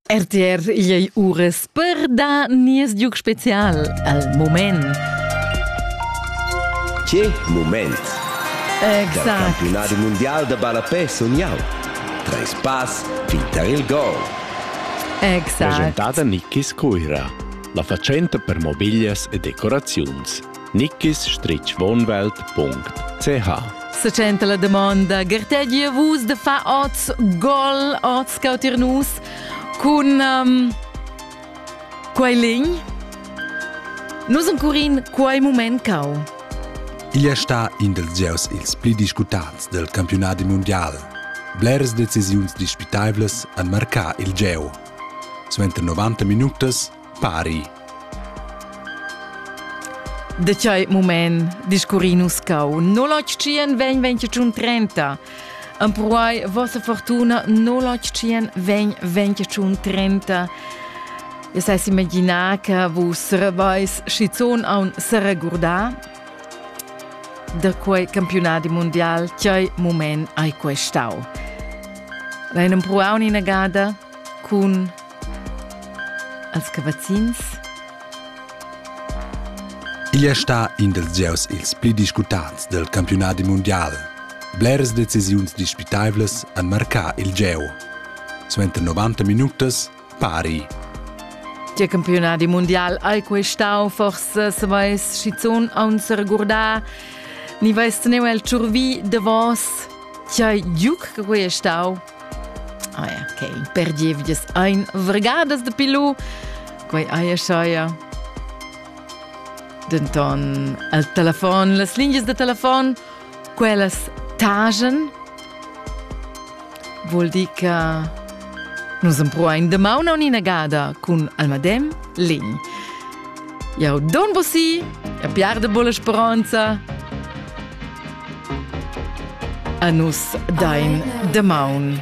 RTR igl ei uras per dar nies giug special al moment. Che moment! Exact. Dal campionat mondial de ballapè sun jau. Treis pass fin tar il gol. Exact. Presentada Nikis Cuira, la fatschenta per mobiglias e decoraziuns. nickisstritschwohnwelt.ch Secenta la domanda, gartegia vus de fa oz gol, oz cautir nus cun um, quei lign? Nus encurin quei moment cau. Igl è sta in dels gieus ils pli discutats del campionat mondial. Bleres decisiuns dispitables han marcà il gieu. Suenter 90 minutas pari. Da tgei mument discurri nus cau? 081 vegn 25 30. Empruai vossa fortuna 081 vegn 25 30. E sai imaginar che vus rebais schizun a un seregurdar da quei campionati mondial tgei moment hai questau. L'hai empruau un'inagada cun als cavazzins. Igl è stà in dels gieus ils pli discutants del campionadi mundial. Bleras decisiuns dispitaivlas han marcà il gieu. Suenter 90 minutas, pari. Tge campionadi mundial hai quei stau? Forse se vais schizun a un regurdar. Ni vais teneu el tschurvi de vos. Chai giuc che quei è stau? Aia, che in per gievgias ein vargadas de pilu, quei aia schaia. Denton al telefon, las lingias de telefon, quellas tagen, vuol dir che nus empruain de mauna un'inagada cun almadem legn. Jau don bossi, a piarde bolla speranza, A nus dain damaun.